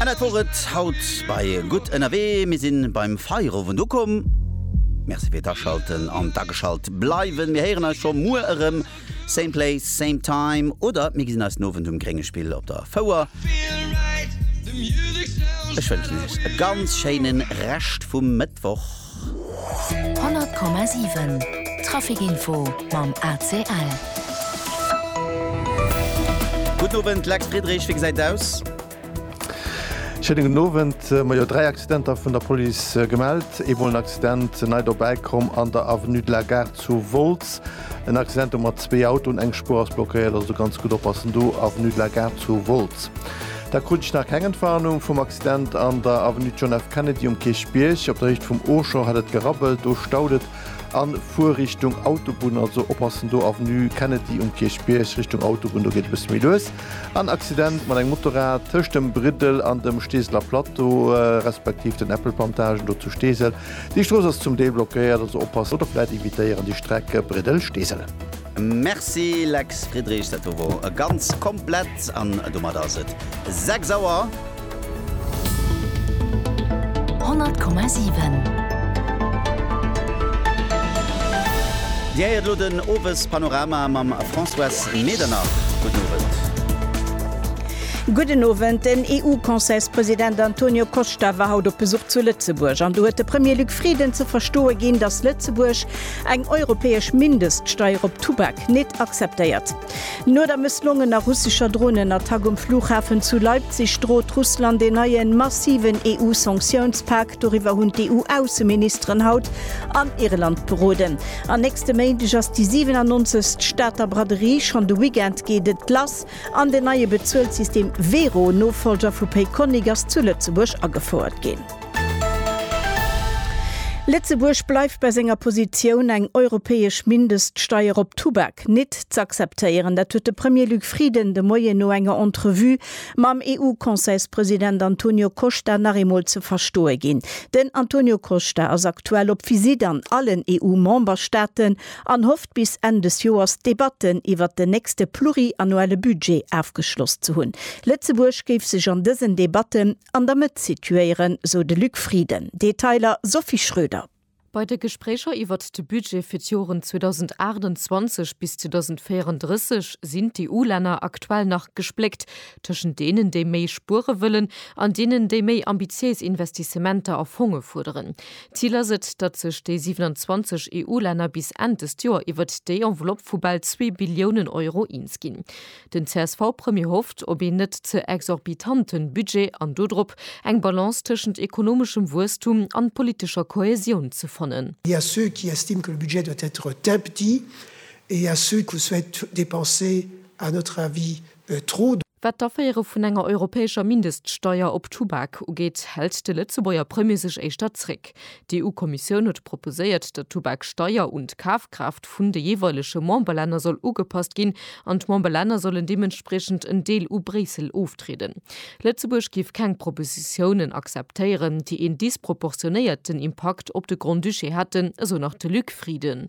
An dat wor et haut bei Gutt ënnerwee. Mir si beim Feierowend ukomm. Merci fir d'Aschalten an d'Ageschalt bleiwen. Mir héieren eis scho muer erëm, same place, same time, oder mir gesinn eis den Owend um Gréngespill op der Fouer. Ech wënschen Iech e ganz schéine Rescht vum Mëttwoch. 100,7 Trafic-Info mam ACL. Gudden Owend, Lex Friedrich, wéi gesäit et aus? Schéine gudden Owend. Ma jo, dräi Accidenter vun der Police gemellt. Eemol en Accident nei dobäi komm an der Avenue de la Gare zu Wolz. En Accident do mat zwee Autoen, eng Spuer ass blockéiert, also do ganz gutt oppassen do, Avenue de la Gare zu Wolz. Da krut ech nach keng Entwarnung vum. Stand an der Avenue John F. Kennedy um Kierchbierg. Op der Héicht vum Auchan hätt et gerabbelt, do staut et a fuer Richtung Autobunn. Also oppassen do, Avenue Kennedy um Kierchbierg Richtung Autobunn, do geet e bësse méi lues. En Accident mat engem Motorrad tëscht dem Briddel an dem Steeseler Plateau, respektiv den Äppelplantagen do zu Steesel. Déi Strooss ass zum Deel blockéiert, also oppassen. Autofrett evitéieren déi Streck Briddel-Steesel. Merci Lex Friedrich, dat do wor e ganz komplett an domat ass et 6 Auer. 100,7. Dir héiert elo den Owespanorama mam Françoise Medernach. Gudden Owend. Gudden Owend. Den EU-Conseilspresident Antonio Costa war haut op Besuch zu Lëtzebuerg an do huet de Premier Luc Frieden ze verstoe ginn, datt Lëtzebuerg Eng europäesch Mindeststeier op Tubak nêt akzeptéiert. No der mësslongener russescher Dronenattack um Flughafen zu Leipzig drot Russland een neien, massiven EU-Sanktiounspak. Doriwwer hunn d'EU-Ausseministeren haut an Irland beroden. An nächste Méindeg ass déi 97. Stater Braderie. Schonn de Weekend geet et lass an den neie Bezuelssystem Wero, Nofollger vu Payconiq, ass zu Lëtzebuerg agefouert ginn. Lëtzebuerg bleift bei senger Positioun, eng europäesch Mindeststeier op Tubak nit z'akzeptéieren. Dat huet de Premier Luc Frieden de Moien no enger Entrevue mam EU-Conseilspresident Antonio Costa nach eemol ze verstoe ginn. Den Antonio Costa ass aktuell op Visitt an allen EU-Memberstaaten an hofft bis Enn des Joers d'Debatten iwwert den nächste pluriannuelle Budget afgeschloss ze hunn. Lëtzebuerg géif sech an dësen Debatten An der Mëtt situéieren, sou de Luc Frieden. Detailer, Sophie Schröder. Bei de Gespréicher iwwert de Budget fir d'Joren 2028 bis 2034 sinn d'EU-Länner aktuell nach gespléckt tëschent deenen, déi méi spuere wëllen, an deenen, déi méi ambitiéis Investissementer a Fonge fuerderen. Zil ass et, datt sech déi 27 EU-Länner bis Enn dëst Joer iwwert déi Enveloppe vu bal zwee Billiounen Euro eens ginn. Den CSV-Premier hofft op een net ze exorbitante Budget an dodrop, eng Balance tëschent ekonomeschem Wuesstum an politescher Kohäsioun ze fannen. Il y a ceux qui estiment que le budget doit être tel petit et il y a ceux qui souhaitent dépenser, à notre avis, trop. Wat d'Aféiere vun enger europäescher Mindeststeuer op Tubak ugeet, hält de Lëtzebuerger Premier sech éischter zréck. D'EU-Kommissioun huet proposéiert, datt d'Tubaksteier un d'Kafkraaft vun de jeeweilege Memberlänner soll ugepasst ginn an d'Memberlänner sollen deementspriechend en Deel u Bréissel oftrieden. Lëtzebuerg géif keng Propositiounen akzeptéieren, déi een disproportionéierten Impakt op de Grand-Duché hätten, esou nach de Luc Frieden.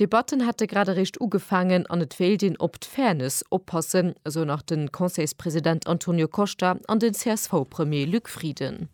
D'Debatten hätte grad eréischt ugefaangen an et wéilt een op d'Fairness oppassen, esou nach de Conseilspresident Antonio Costa an den CSV-Premier Luc Frieden.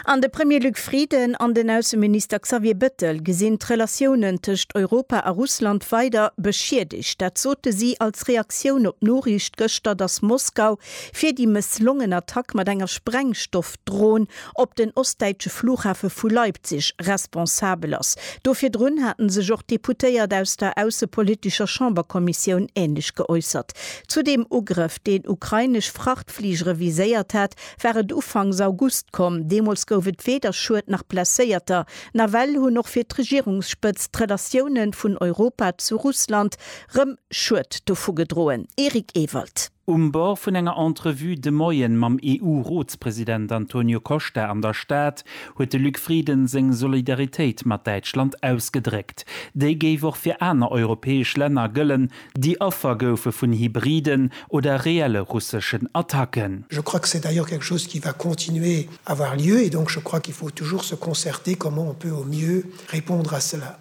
An de Premier Luc Frieden an den Ausseminister Xavier Bettel gesinn d'Relatiounen tëscht Europa a Russland weider beschiedegt. Dat sote si als Reaktioun op d'Noriicht gëschter, datt Moskau fir déi mësslongen Attack mat enger Sprengstoffdron op den ostdäitsche Flughafe vu Leipzig responsabel ass. Do virdrun haten sech och d'Deputéiert aus der aussepolitischer Chamberkommissioun änlech geäussert. Zu deem Ugrëff, deen ukrainesch Frachtfligere viséiert hat, war et ufanks August komm. Deemools gouf et weder Schued nach Blesséierter. Nawell hunn och fir d'Regierungsspëtzt d'Relatioune vun Europa zu Russland rëm Schued dovu gedroen. Eric Ewald. Um Bord vun enger Entrevue de Moien mam EU-Rotspresident Antonio Costa an der Stad huet de Luc Frieden seng Solidaritéit mat Däitschland ausgedréckt. Déi géif och fir aner europäesch Länner gëllen, déi Affer goufe vun hybriden oder reelle russeschen Attacken. Je crois que c'est d'ailleurs quelque chose qui va continuer avoir lieu et donc je crois qu'il faut toujours se concerter comment on peut au mieux répondre à cela.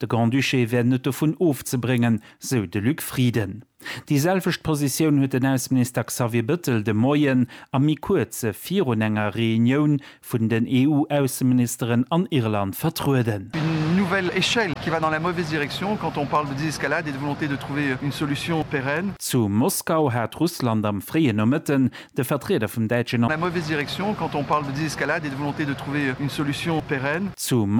De Grand-Duché wär net dovun ofzebréngen, sou de Luc Frieden. Déi selwecht Positioun huet den Ausseminister Xavier Bettel de Moien a méi kuerze virun enger Reunioun vun den EU-Ausseministeren an Irland vertrueden. Une nouvelle échelle qui va dans la mauvaise direction quand on parle de désescalade et de volonté de trouver une solution pérenne. Zu Moskau hat Russland am fréien Nomëtten de Vertrieder vum däitschen. La mauvaise direction quand on parle de désescalade et de volonté de trouver une solution pérenne. Zu.